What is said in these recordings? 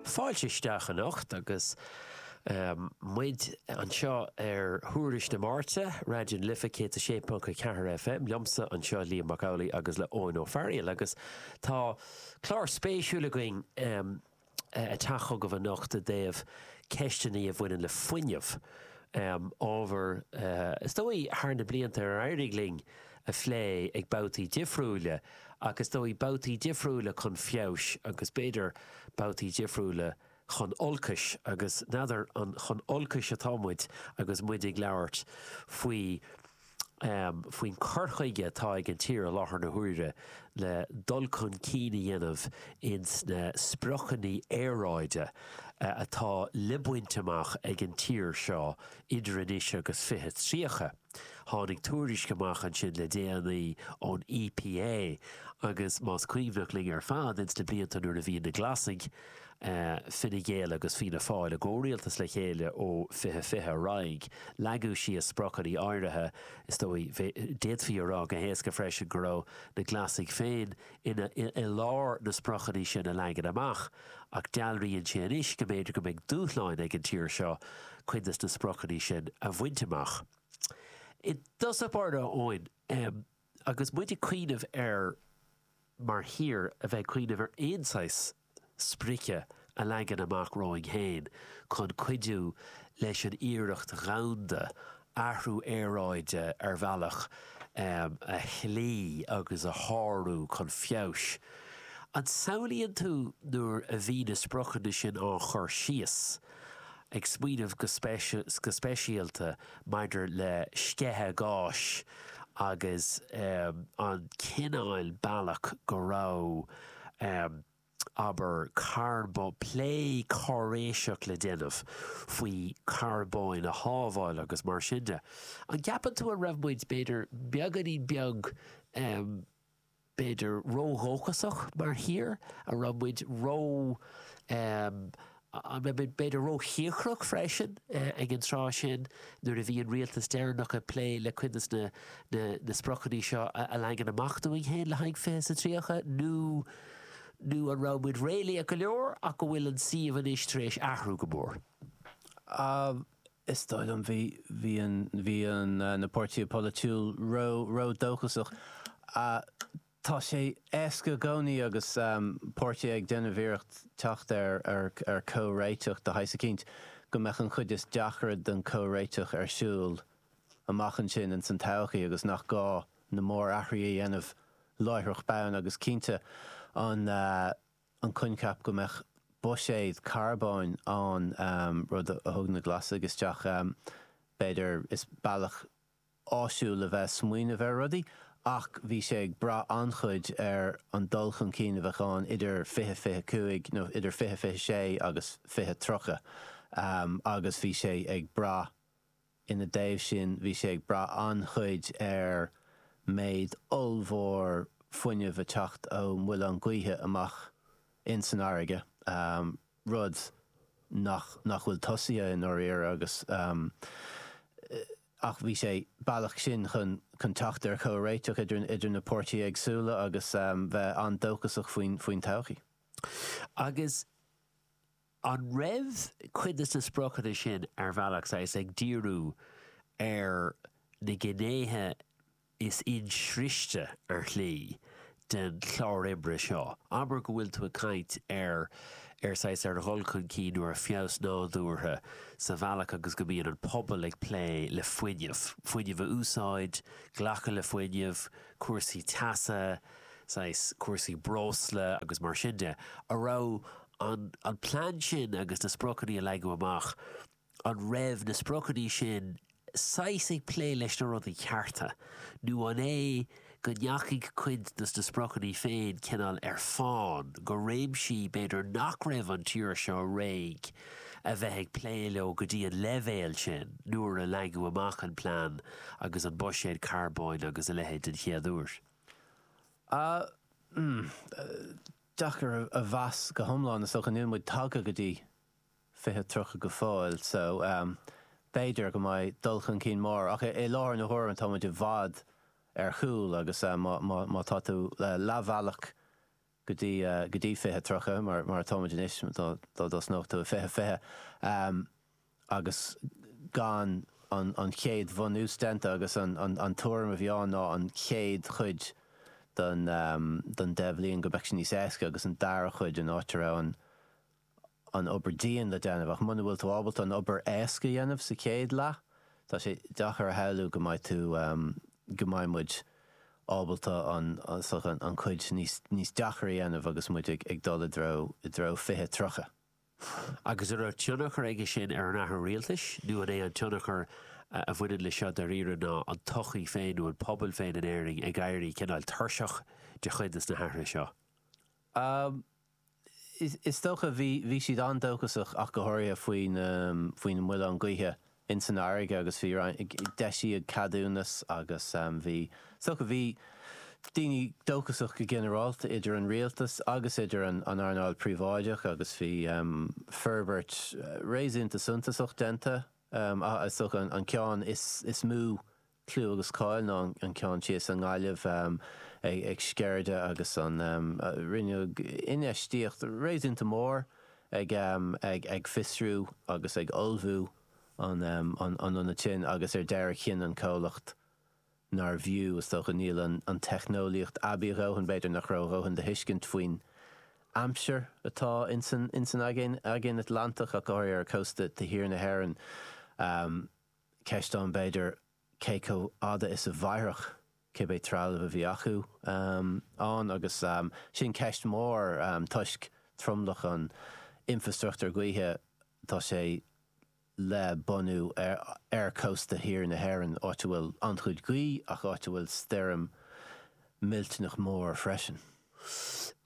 Fáilte isteach anocht agus muid anseo ar Thuairisc na Máirte, Raidió na Life 106.4 FM, liomsa anseo Liam Mac Amhlaigh agus le Eoin Ó Fearghail agus tá clár spéisiúil againn ag teacht chugaibh anocht i dtaobh ceisteanna a bhaineann le fuinneamh, ábhar is dóigh thar na blianta ar éirigh linn a phlé ag babhtaí difriúile ach is dóigh babhtaí difriúile chun feabhais agus b'fhéidir babhtaí difriúile chun olcais agus n'fheadar chun olcais atá muid agus muid ag labhairt faoi faoin cur chuige atá ag an tír i láthair na huaire le dul chun cinn a dhéanamh ins na spriocanna aeráide atá le baint amach ag an tír seo idir anois agus 2030. Tháinig tuairisc amach ansin le déanaí ón EPA agus más cuimhneach linn ar fad ins na blianta nuair a bhí na Glasaigh, Fine Gael agus Fianna Fáil i gcomhrialtas le chéile ó 2020 ar aghaidh, leagadh síos spriocanna áirithe. Is dóigh, d'fhéadfaí a rá go héasca freisin go raibh na Glasaigh féin i gceartlár na spriocanna sin a leagan amach, ach dealraíonn sé anois go mb'fhéidir go mbeidh dúshláin ag an tír seo cuid de na spriocanna sin a bhaint amach. I dtosach báire, a Eoin, agus muid ag cuimhneamh ar, mar thír, a bheith ag cuimhneamh ar aon saghas sprice a leagan amach romhainn féin chun cuidiú leis an iarracht dhomhanda athrú aeráide ar bhealach a shlí agus a shárú chun feabhais. An samhlaíonn tú nuair a bhí na spriocanna sin á gcur síos, ag smaoineamh go speisialta maidir le sceitheadh gáis agus an cineál bealach go raibh, abair, carbó, plé cáiréiseach le déanamh faoi charbóin a shábháil agus mar sin de. An ceapann tú an raibh muid, b'fhéidir, beagáinín beag. b'fhéidir, ródhóchasach mar thír, an raibh muid ró, em, an raibh muid b'fhéidir róchíocrach freisin ag an tráth sin nuair a bhí an rialtas deireanach ag plé le cuid de na, na, na spriocanna seo a leagan amach dúinn féin le haghaidh fiche is a tríocha nó, nó an raibh muid réalaíoch go leor ach go bhfuil an suíomh anois tar éis athrú go mór? Em, Is dóigh liom bhí, bhí an, bhí an, na páirtithe polaitiúil ró, ró dóchasach. Tá sé éasca i gcónaí agus páirtithe ag déanamh iarracht teacht ar, ar, ar comhréiteach de shaghas eicínt, go mbeadh an chuid is deacra den comhréiteach ar shiúl amach ansin ins an todhchaí agus nach gá na mór athruithe a dhéanamh láithreach bonn agus cinnte an, an coincheap go mbeadh buiséad carbóin ann, rud a thug na Glasaigh isteach. B'fhéidir is bealach áisiúil a bheith ag smaoineamh ar rudaí, ach bhí sé ag brath an-chuid ar an dul chun cinn a bheadh ann idir 2025, nó idir 2026 agus 2030, agus bhí sé ag brath, Ina dtaobh sin, bhí sé ag brath an-chuid ar méid ollmhór fuinnimh a teacht ó mhuileann gaoithe amach in san fharraige, rud nach nach bhfuil tosaithe i ndáiríre agus ach bhí sé an bealach sin chun chun teacht ar chomhréiteach idir idir na páirtithe éagsúla agus bheith an-dóchasach faoin faoin todhchaí. Agus. An raibh cuid de na spriocanna sin, ar bhealach, saghas, ag díriú ar na gnéithe is insroichte, ar shlí, den chlár oibre seo? Abair go bhfuil tú ag caint ar, ar saghas, ar dhul chun cinn nó ar feabhas nádúrtha sa bhealach agus go mbíonn an pobal ag plé le fuinneamh, fuinneamh a úsáid, glacadh le fuinneamh, cúrsaí teasa, saghas, cúrsaí breosla agus mar sin de. An raibh. an plean sin agus na spriocanna a leagadh amach, an raibh na spriocanna sin saghas ag plé leis na rudaí cearta, nó an é go ndeachaigh cuid dos na spriocanna féin cineál ar fán go réimsí b'fhéidir nach raibh an tír seo réidh a bheith ag plé leo go dtí an leibhéal sin nuair a leagadh amach an plean agus an buiséad carbóin agus a leithéid den chéad uair? Aaa. deacair a mheas go hiomlán, is dócha. Níl muid tagtha go dtí 2030 go fóill so b'fhéidir go mbeidh dul chun cinn mór ach i láthair na huaire tá muid i bhfad ar chúl agus má tá tú leathbhealach go dtí 2030, mar atáimid anois, dá dtosnódh tú i 2020. agus gan an chéad bhunús déanta agus an tuairim a bhí ann ná an chéad chuid den deich bhliain go mbeadh sé níos éasca agus an dara cuid an áit a raibh an obair dian le déanamh ach muna bhfuil tú ábalta an obair éasca a dhéanamh sa chéad leath tá sé deacair a shamhlú go mbeidh tú go mbeidh muid ábalta an cuid níos deacair a dhéanamh agus muid ag dul i dtreo 2030. Agus an raibh tionchar aige sin ar an athrú rialtais, nó an é an tionchar a bhaineann leis seo dáiríre ná an tsochaí féin nó an pobal féin in Éirinn ag éirí cineál tuirseach de chuid dos na hathruithe seo? Um, is dócha, bhí siad an-dóchasach ach go háirithe faoin mhuileann gaoithe ins an fharraige agus bhí roinnt, d'eisíodh ceadúnas agus bhí, so bhí daoine dóchasach go ginearálta idir an rialtas agus idir an earnáil phríobháideach agus bhí forbairt réasúnta suntasach déanta, so an ceann is mó clú agus cáil ná an ceann thíos i nGaillimh ag Sceirde agus an rinneadh infheistíocht réasúnta mór ag fiosrú agus ag ullmhú an ionaid sin agus ar deireadh chinn an comhlacht nárbh fhiú, is dócha, níl an teicneolaíocht aibí a dhóthain, b'fhéidir nach raibh a dhóthain de thuiscint faoin aimsir atá ins an Aigéan Atlantach ach go háirithe ar chósta thiar na hÉireann. Ceist ann, b'fhéidir, cé chomh fada is a mhairfeadh cibé trealamh a bhí acu ann agus sin ceist mhór toisc tromlach an infreastruchtúir gaoithe tá sé le bunú ar chósta thiar na hÉireann, áit a bhfuil an-chuid gaoth ach áit a bhfuil stoirm mhillteanach mór freisin.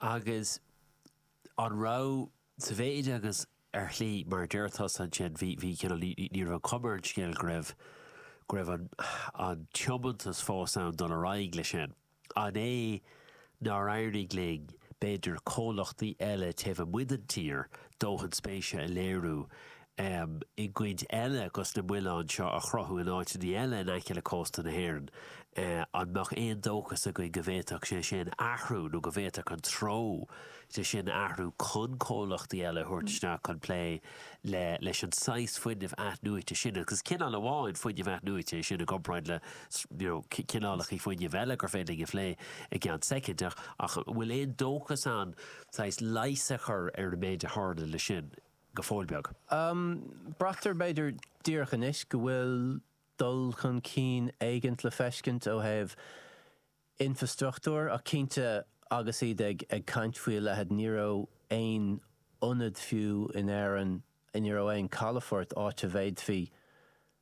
Agus an raibh Sa mhéid agus, ar shlí, mar a deir tusa ansin, bhí, bhí, cineál, ní, ní, ní raibh an chuma ar an scéal go raibh, go raibh an, an tiomantas fós ann dul ar aghaidh leis sin. An é nár éirigh linn, b'fhéidir, comhlachtaí eile taobh amuigh den tír, dóthain spéise a léiriú ann i gcuid eile chun na muileáin seo a chruthú in áiteannaí eile in aice le cósta na hÉireann. An mbeadh aon dóchas againn go bhféadfadh sé sin athrú nó go bhféadfadh an treo sin athrú chun comhlachtaí eile a thabhairt isteach chun plé le leis an saghas fuinnimh athnuaite sin? Agus is cineál amháin fuinnimh athnuaite é sin i gcomparáid le you know cineálachaí fuinnimh eile gur féidir linn a phlé i gceann soicind ach an bhfuil aon dóchas ann saghas leighis a chur ar an méid a tharla le sin? go fóill beag. Braitear, b'fhéidir, díreach anois go bhfuil dul chun cinn éigint le feiscint ó thaobh infrastruchtúir ach cinnte agus iad ag caint faoi a leithéid ní raibh aon ionad fiú in Éirinn, ní raibh aon chalafort áit a bhféadfaí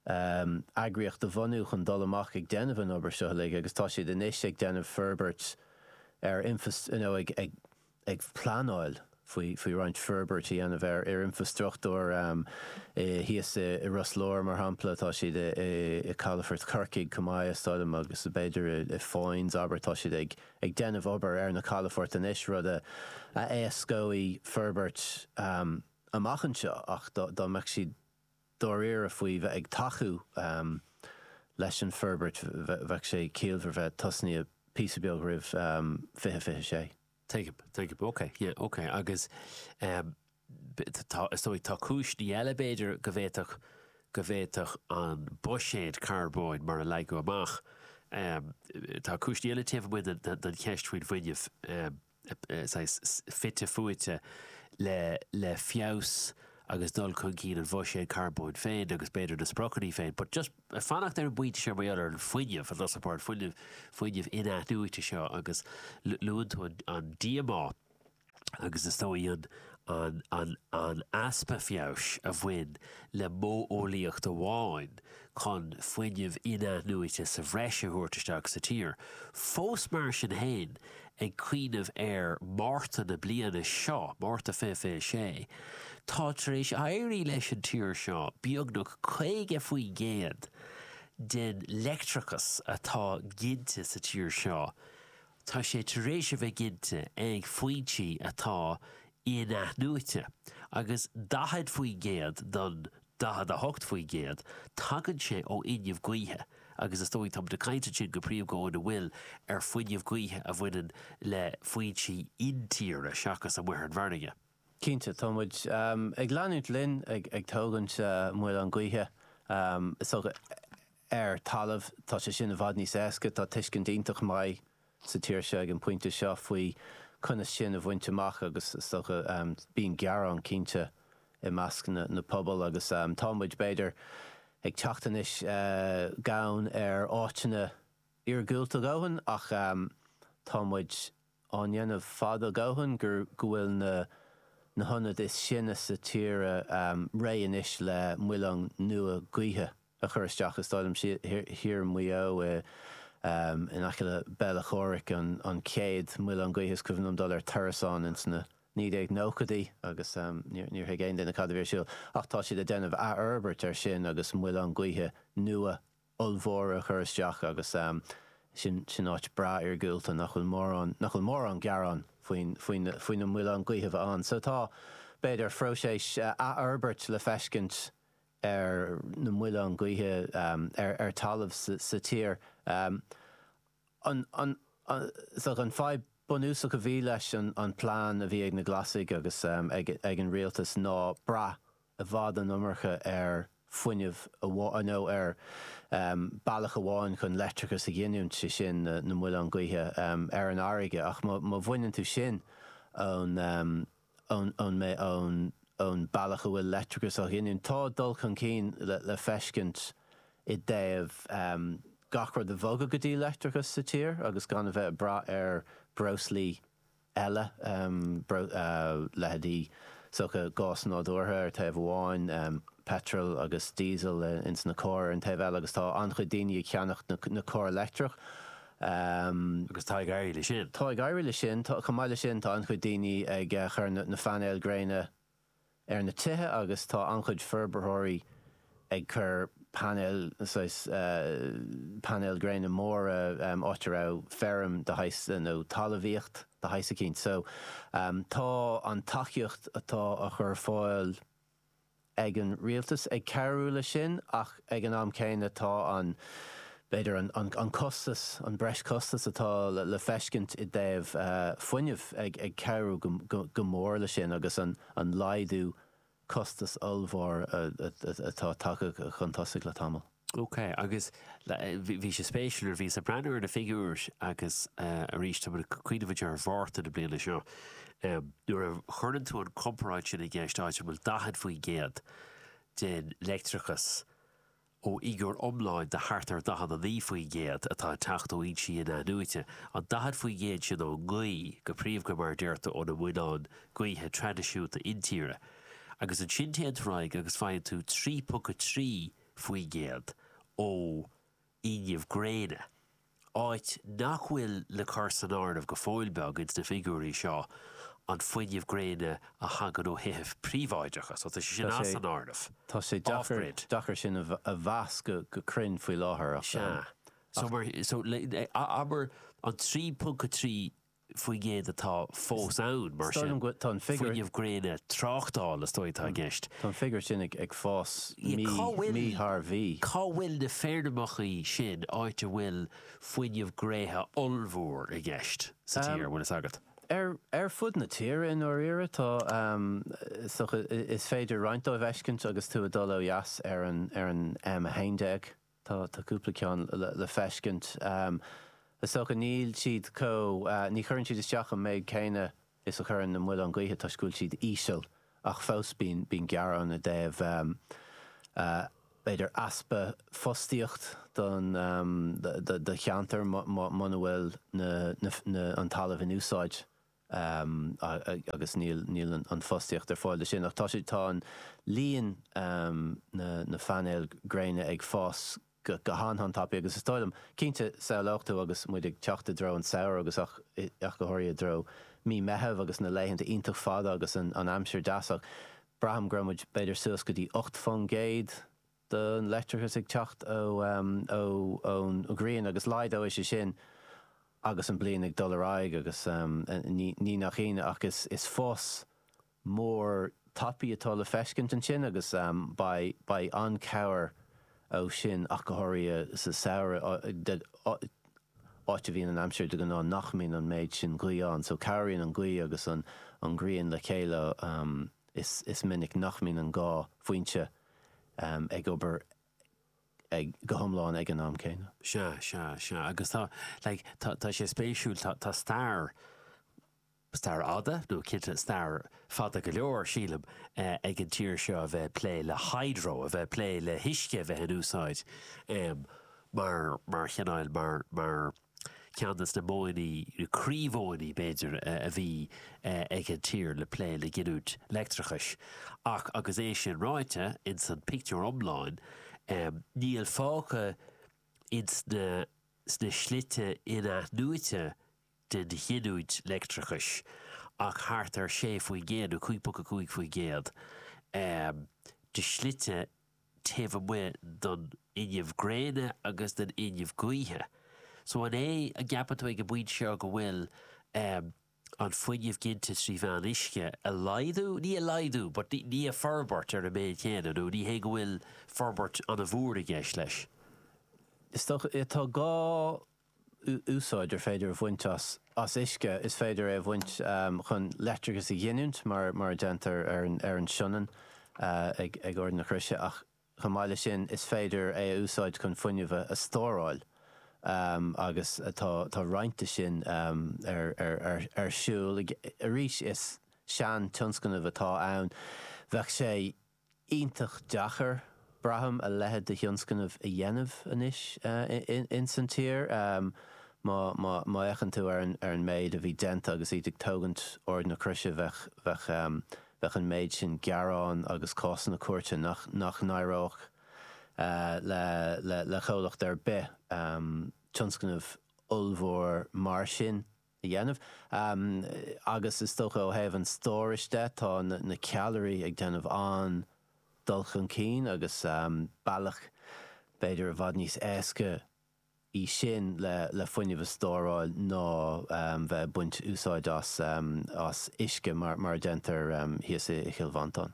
eagraíocht a bhunú chun dul amach ag déanamh an obair seo uilig agus tá siad anois ag déanamh forbairt ar infrastruchtúr, you know, ag. ag pleanáil faoi roinnt forbairt a dhéanamh ar infreastruchtúr thíos i Ros Láir, mar shampla. Tá siad i calafort Chorcaí chomh maith, is dóigh liom, agus b'fhéidir i Foynes, abair. Tá siad ag déanamh obair ar na calafoirt anois, rud a éascóidh forbairt amach anseo. Ach dá mbeadh siad dáiríre faoi bheith ag tacú leis an bhforbairt, bheadh sé ciallmhar bheith tosnaíthe píosa beag roimh 2026. Tuigim, tuigim. Ok, yeah, ok. Agus tá, is dóigh, tá cúiseanna eile, b'fhéidir, go bhféadfadh, go bhféadfadh an buiséad carbóin, mar a leagadh amach, tá cúiseanna eile taobh amuigh den cheist faoin bhfuinneamh. saghas fite fuaite le le feabhas agus dul chun cinn an bhuiséid charbóin féin agus b'fhéidir na spriocanna féin, but just fanacht ar an bpointe seo mar gheall ar an fuinneamh, fuinneamh, fuinneamh in-athnuaite seo agus luann tú an díomá agus is dóigh an an easpa feabhais a bhain le modheolaíocht amháin chun fuinneamh in-athnuaite sa bhreis a thabhairt isteach sa tír. Fós mar sin féin, Ag cuimhneamh ar Márta na bliana seo, Márta 2026, tá tar éis éirí leis an tír seo beagnach 50% den leictreachas atá ginte sa tír seo, tá sé tar éis a bheith ginte ag foinsí atá in-athnuaite, agus 40% den 48%, tagann sé ó fhuinneamh gaoithe agus is dóigh, tá muid ag caint ansin go príomha go, an bhfuil, ar fuinneamh gaoithe a bhaineann le foinsí intíre seachas amuigh ar an bhfarraige. Cinnte, tá muid ag leanúint linn ag tógaint muileann gaoithe, is dócha, ar talamh, tá sé sin i bhfad níos éasca, tá tuiscint iontach maith sa tír seo ag an bpointe seo faoi conas sin a bhaint amach agus is dócha bíonn gearán cinnte i measc na pobal agus tá muid b'fhéidir ag teacht anois gann ar áiteanna iargúlta a ndóthain ach tá muid á ndéanamh fada go leor anois go bhfuil na hionaid is sine sa tír réidh anois le muileáin nua gaoithe. a chur isteach thíos thiar i Maigh Eo in aice le Béal Átha Chomhraic, an chéad mhuileann gaoithe is cuimhin liom dul ar turas ann ins na 1990idí agus níor thuig aon duine cad a bhí ar siúl. Ach tá siad ag déanamh athfhorbairt ar sin agus muileáin gaoithe nua ollmhóra á chur isteach agus sin áit breá iargúlta nach bhfuil mórán, nach bhfuil mórán gearán faoin, faoi na muileáin gaoithe a bheith ann. So tá, b'fhéidir, próiseas athfhorbairt le feiscint ar na muileáin gaoithe ar talamh sa tír seo. An fadhb bunúsach a bhí leis an plean a bhí ag na Glasaigh agus ag an rialtas ná brath i bhfad an iomarca ar fuinneamh amháin, nó ar bealach amháin chun leictreachas a ghiniúint, sé sin na muileáin gaoithe ar an bhfarraige. Ach má bhaineann tú sin ón. ón mbeidh ón ón bealach a bhfuil leictreachas á ghiniúint. Tá dul chun cinn le le feiscint i dtaobh gach rud a bhogadh go dtí leictreachas sa tír agus gan a bheith ag brath ar breoslaí eile, leithéidí sórt gás nádúrtha ar thaobh amháin, peitreal agus diesel ins na cairr ar an taobh eile agus tá an-chuid daoine ag ceannacht na cairr leictreach Agus tá ag éirí leis sin. Tá ag éirí leis sin. Chomh maith le sin, tá an-chuid daoine ag cur na painéil gréine ar na tithe agus tá an-chuid forbarthóirí ag cur painéil, saghas, painéil gréine móra áit a raibh feirm de shaghas nó talamhaíocht de shaghas eicínt. So, tá an tacaíocht atá á chur ar fáil. ag an rialtas ag cabhrú leis sin ach ag an am céanna tá an, b'fhéidir, an costas, an breis costas atá le feiscint i dtaobh fuinnimh ag cabhrú go mór leis sin agus an laghdú costas ollmhór atá tagtha chun tosaigh le tamall. Ok, agus bhí sé spéisiúil nuair a bhí mé ag breathnú ar na figiúir agus arís tá mé ag cuimhneamh muid ar Mhárta na bliana seo nuair a chuireann tú an chomparáid sin i gceist áit a bhfuil 40% den leictreachas ó fhigiúr iomláin de thart ar 49% atá ag teacht ó fhoinsí inathnuaite, an 40% sin ón ngaoth go príomha mar a deir tú, ó na muileáin gaoithe traidisiúnta intíre. Agus ansin téann tú ar aghaidh agus faigheann tú 3.3 faoin gcéad ó fhuinneamh gréine, ach níl le cur san áireamh go fóill beag ins na figiúirí seo an fuinneamh gréine a thagann ó thithe príobháideacha, so tá sé sin as an áireamh. Tá sé deacair, deacair sin a mheas go cruinn faoi láthair ach. Sea. So mar, so le, abair an trí ponc a trí faoin gcéad atá fós ann, mar sin, fuinneamh gréine tráchtála, is dóigh, atá i gceist. Tá an figiúr sin ag fás mí thar mhí. Cá bhfuil na feirmeacha sin áit a bhfuil fuinneamh gréine ollmhór i gceist sa tír, an bhfuil fhios agat? Ar fud na tíre, i ndáiríre. Tá, is féidir roinnt dóibh a fheiscint agus tú ag dul ó dheas ar an M11. Tá cúpla ceann le feiscint. Is dócha níl siad chomh, ní chuireann siad isteach an méid céanna is a chuireann na muileáin gaoithe toisc go bhfuil siad íseal ach fós bíonn gearán i dtaobh b'fhéidir easpa fostaíocht don do cheantar muna bhfuil na an talamh in úsáid. agus níl an fostaíocht ar fáil dó sin. Ach tá siad, tá an líon na phainéal gréine ag fás go han-tapaidh agus is dóigh liom, cinnte, shamhlófá agus muid ag teacht i dtreo an samhradh agus ach go háirithe i dtreo mí Meitheamh agus na laethanta iontach fada agus an aimsir deas ach braithim go raibh muid b'fhéidir suas go dtí ocht fán gcéad de leictreachas ag teacht ón ghrian agus laghdóidh sé sin agus an bliain ag dul ar aghaidh agus ní nach ionadh ach is fás mór tapaidh atá le feiscint ansin agus beidh an-cabhair ó sin ach go háirithe sa samhradh áit a bhíonn an aimsir de ghnáth nach mbíonn an méid sin gaoth ann so cabhraíonn an gaoth agus an ghrian le chéile is minic nach mbíonn an dhá foinse ag obair go hiomlán ag an am céanna. Sea, sea, sea. Agus tá, like, tá, tá sé spéisiúil, tá, tá stair, stair fhada, nó cinnte stair fada go leor, sílim, eh, ag an tír seo a bheith ag plé le hydro, a bheith ag plé le huisce a bheith in úsáid, em, mar, mar chineál, mar, mar, Ceann de na modhanna, nó croímhodhanna, b'fhéidir, a bhí ag an tír le plé le giniúint leictreachais. Ach agus é sin ráite, ins an pictiúr iomlán, níl fágtha ins na slite in-athnuaite den ghiniúint leictreachais ach thart ar 6%, nó 5.5%, de shlite taobh amuigh den fhuinneamh gréine agus den fhuinneamh gaoithe. So an é an gceapann tú ag an bpointe seo go bhfuil ehm an fuinneamh ginte trí mheán uisce a laghdú, ní a laghdú but ní a forbairt ar an méid céanna nó ní hé go bhfuil forbairt an-mhór i gceist leis? Is dócha, tá gá úsáid ar féidir a bhaint as uisce, is féidir é a bhaint chun leictreachas a ghiniúint, mar a déantar ar an Sionainn ag Ard na Croise, ach chomh maith leis sin, is féidir é a úsáid chun fuinneamh a stóráil agus tá roinnt de sin ar siúl. Arís, is sean-tionscnamh atá ann. Bheadh sé. iontach deacair, braithim, a leithéid de thionscnamh a dhéanamh anois ins an tír. Má fhéachann tú ar an méid a bhí déanta agus iad ag tógaint Ard na Croise, bheadh an méid sin gearán agus cásanna cúirte nach n-éireodh le comhlacht ar bith tionscnamh ollmhór mar sin a a dhéanamh. Agus is dócha ó thaobh an stórais de, tá na ceallraí ag déanamh an-dul chun cinn agus bealach b'fhéidir i bhfad níos éasca í sin le fuinneamh a stóráil ná bheith ag baint úsáid as uisce mar a déantar thíos i gCill Mhantáin.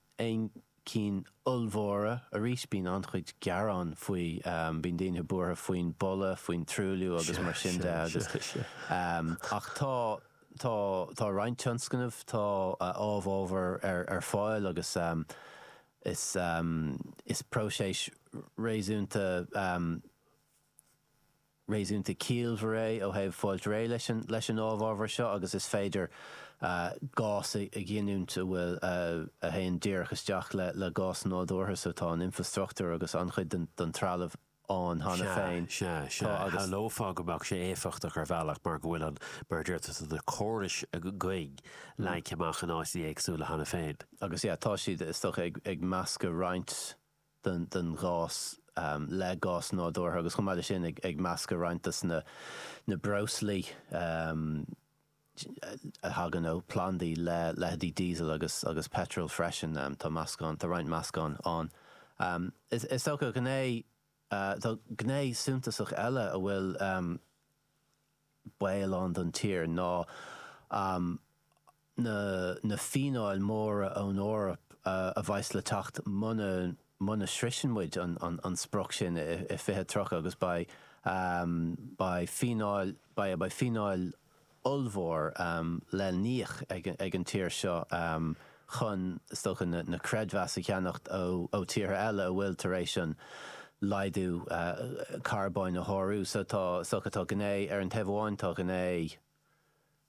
aon chinn ollmhóra. Arís, bíonn an-chuid gearán faoi. Bíonn daoine buartha faoin boladh, faoin truailliú agus mar sin de agus, ach tá, tá, tá roinnt tionscnamh, tá amhábhar ar, ar fáil agus is, is próiseas réasúnta. réasúnta ciallmhar é ó thaobh fáilt réidh leis an amhábhar seo agus is féidir gás a ghiniúint a bhfuil a théann díreach isteach le gás nádúrtha so tá an infrastruchtúr agus an-chuid den trealamh ann cheana féin. Sea, sea, sea. Shamhlófá go mbeadh sé éifeachtach ar bhealach mar go bhfuil an, mar a dúirt tú ansin, na córais againn leagtha amach in áiteanna éagsúla cheana féin. Agus, yeah, tá siad, is dócha, ag meascadh roinnt. den ghás, le gás nádúrtha agus chomh maith le sin ag meascadh roinnt de na breoslaí a thagann ó phlandaí le leitheidí diesel agus peitreal freisin. Tá meascán, tá roinnt meascán ann. Is dócha, gné, tá gné suntasach eile a bhfuil. baol ann don tír ná na fíneáil mhóra ón Eoraip a bheas le teacht muna sroicheann muid an sprioc sin i 2030 agus beidh fíneáil ollmhór le n-íoc ag an tír seo. chun is dócha na creidmheasa a cheannacht ó tíortha eile a bhfuil tar éis an laghdú carbóin a shárú. So tá, is dócha, tá gné ar an taobh amháin, tá gné ar